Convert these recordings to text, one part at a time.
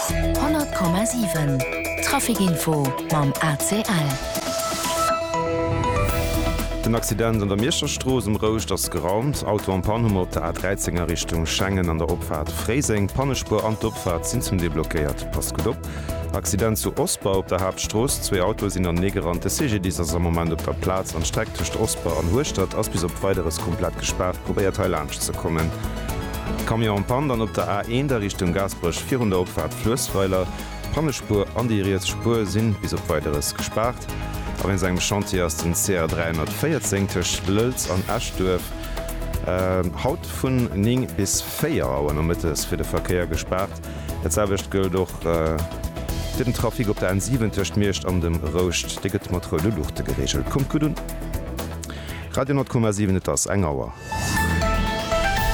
100,7 Trafic Info mam ACL. Den Accident an der Mierscher Strooss um Rouscht ass geraumt. Auto am Pann hu mer op der A13 a Richtung Schengen an der Opfaart Fréiseng. D'Pannespuer an d'Opfaart sinn zum Deel blockéiert. Passt gutt op. Accident zu Osper op der Haaptstrooss. Zwee Autoe sinn anenee gerannt. De CGDIS ass am Moment op der Plaz an d'Streck tëscht Osper an Hueschtert ass bis op Weideres komplett gespaart. Probéiert hei. Gaasperech ze kommen. Camion en panne, dann op der A1 a Richtung Gaasperech virun der Opfaart Fluessweiler. D'Pannespuer an déi riets Spuer si bis op Weideres gespaart. A wéinst engem Chantier ass den CR 314 tëscht Lëlz an Eschduerf haut vun 9 bis 4 Auer nomëttes fir de Verkéier gespaart. Dat selwecht gëllt och fir den Trafic op der N7 tëscht Miersch an dem Rouscht. Dee gëtt mat roude Luuchte gereegelt. Kommt gutt un! Radio 10,7 Et ass eng Auer.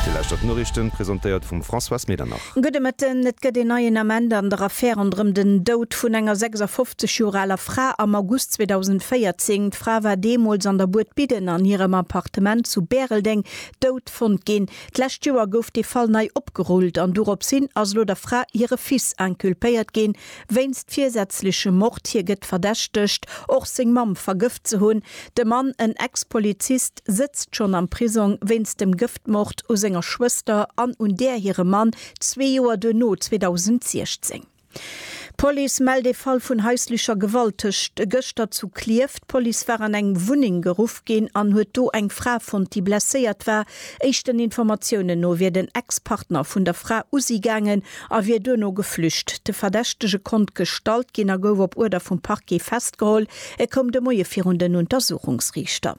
Dir lauschtert d'Noriichten, presentéiert vum Françoise Medernach. Gudde Mëtten. Et gëtt een neien Ament an der Affär ronderëm den Doud vun enger 56 Joer aler Fra am August 2014. D'Fra war deemools an der Buert Bidden an hirem Appartement zu Bäreldeng dout fonnt ginn. D'lescht Joer gouf dee Fall nei opgerullt an dorops hin ass elo der Fra hire Fils inculpéiert ginn wéinst virsätzlechem Mord. Hie gëtt verdächtegt, och seng Mamm vergëft ze hunn. De Mann, en Ex-Polizist, Gëft, sëtzt schonn am Prisong wéinst dem Gëftmord u senger Schwëster an un där hirem Mann zwee Joer duerno, 2016. D'Police mellt ee Fall vun haislecher Gewalt tëscht e gëschter zu Klierf. D'Police war an eng Wunneng geruff ginn an huet do eng Fra fonnt, déi blesséiert war. Éischten Informatiounen no wier den Ex-Partner vun der Fra u si gaangen a wier duerno geflücht. De Verdächtege konnt gestallt ginn a gouf op Uerder vum Parquet festgeholl. E koum de Moie virun den Untersuchungsriichter.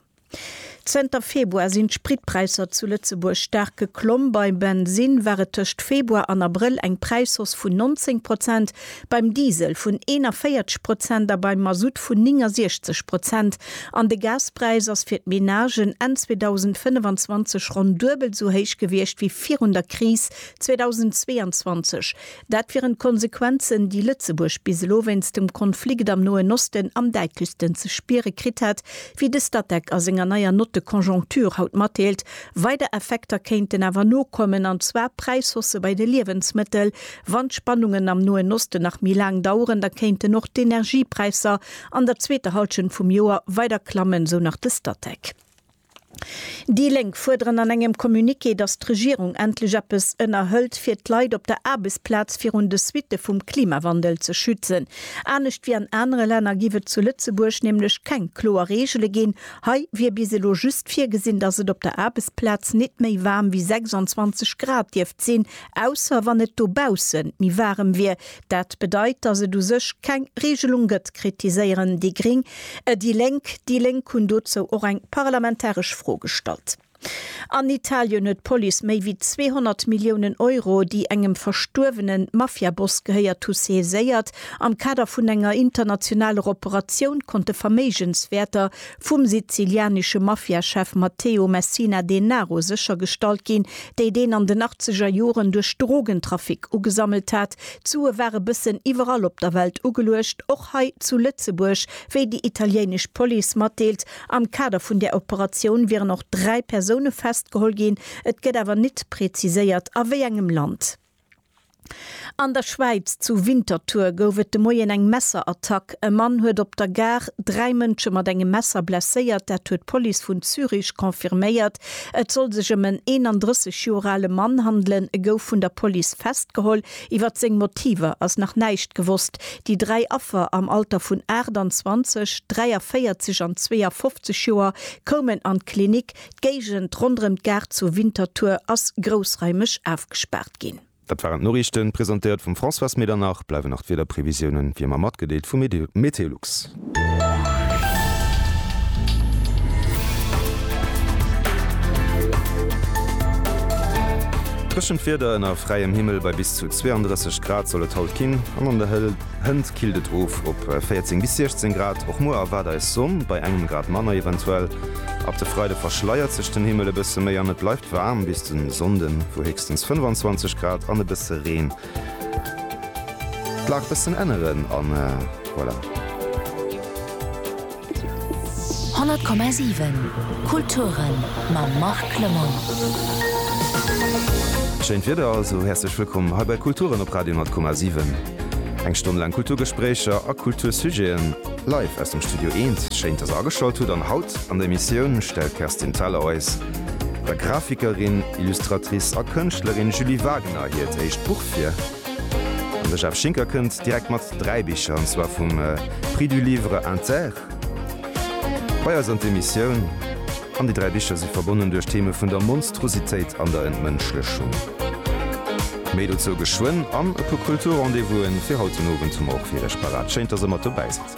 Zënter Februar sinn d'Spritpräisser zu Lëtzebuerg staark geklomm. Beim Bensinn war et tëscht Februar an Abrëll eng Präisshausse vun 19 Prozent, beim Diesel vun 41 Prozent a beim Masutt vun 69 Prozent. An de Gaspräis ass fir d'Menagen Enn 2025 ronn duebel esou héich gewiescht wéi virun der Kris 2022. Dat wieren d'Konsequenzen, déi Lëtzebuerg bis elo wéinst dem Konflikt am Noen Osten am däitlechsten ze spiere kritt hätt, wéi de Statec a senger neier Note de conjoncture haut matdeelt. Weider Effekter kéinten awer nokommen, an zwar Präishaussë bei de Liewensmëttel. Wann d'Spannungen am Noen Osten nach méi laang daueren, da kéinten och d'Energiepräisser an der zweeter Hallschent vum Joer weider klammen, sou nach de Statec. Déi Lénk fuerderen an engem Communiqué, datt d'Regierung endlech eppes ënnerhëlt, fir d'Leit op der Aarbechtsplaz virun de Suitte vum Klimawandel ze schützen. Anescht wéi an anere Länner giff et zu Lëtzebuerg nämlech keng kloer Reegele ginn. Hei wier bis elo just virgesinn, datt et op der Aarbechtsplaz net méi waarm wéi 26 Grad dierft sinn, ausser wann et dobausse méi waarem wier, Dat bedeit, dass et u sech keng Regelung gëtt, kritiséieren déi Gring déi Lénk. Déi Lénk hunn dozou och eng parlamentaresch Fro gestallt. An Italien huet d'Police méi wéi 200 Milliounen Euro, déi engem verstuerwene Mafiaboss gehéiert hu saiséiert. Am Kader vun enger internationaler Operatioun konnte Verméigenswäerter vum sizilianesche Mafiachef Matteo Messina Denaro séchergestallt ginn, déi deen an den achtzeger Joren duerch Drogentrafic ugesammelt hat. D'Sue war e bëssen iwwerall op der Welt ugeluecht, och hei zu Lëtzebuerg, wéi déi italienesch Police matdeelt. Am Kader vun där Operatioun wieren och dräi Persoune festgeholl ginn, et gëtt awer nit preziséiert a wéi engem Land. An der Schwäiz, zu Winterthur, gouf et de Moien eng Messerattack. E Mann huet op der Gare dräi Mënsche mat engem Messer blesséiert, dat huet d'Police vun Zürich confirméiert. Et soll sech ëm en 31 Joer ale Mann handelen. E gouf vun der Police festgeholl. Iwwer seng Motiver ass nach näischt gewosst. Déi dräi Affer am Alter vun 28, 43 an 52 Joer koumen an d'Klinik. D'Géigend ronderëm d'Gare zu Winterthur ass groussraimeg ofgespaart ginn. Dat waren d'Noriichten, presentéiert vum Françoise Medernach. Bleiwen nach d'Wiederprevisiounen, wéi ëmmer matgedeelt vu Meteolux. Dréchent Wieder ënner fräiem Himmel, bei bis zu 32 Grad soll et haut ginn an an der Hël. Hënt killt et of op 14 bis 16 Grad. Och muer erwaart eis Sonn, bei engem Grad manner eventuell. Ab de Freide verschleiert sech den Himmel e bësse méi an et bleift waarm bis de Sonnde, wou héchstens 25 Grad an e bësse Reen d'Lag bëssen änneren. An voilà. 100,7 Kulturen mam Marc Clement. Schéint Wieder also, häerzlech wëllkomm hei bei Kulturen op Radio 100,7. Eng Stonn laang Kulturgespréicher a Kultursujeten live aus dem Studio Eent. Schéint dass der ageschalt hutt an haut an der Emissioun stellt d'Kerstin Thalau eis der Grafikerin, Illustratrice a Kënschtlerin Julie Wagener hiert éischt Buch vir. De Jeff Schinker kënnt direkt mat 3 Bicher, an zwar vum Prix du Livre Inter bei eis an d'Emissioun. An déi 3 Bicher si verbonnen duerch d'Theme vun der Monstrositéit an der Entmënschlechung. Méi dozou geschwënn. An e puer Kultur-Rendez-Vous'en fir haut den Owend hu mer och fir iech parat. Schéin, dass der mat dobäi sidd.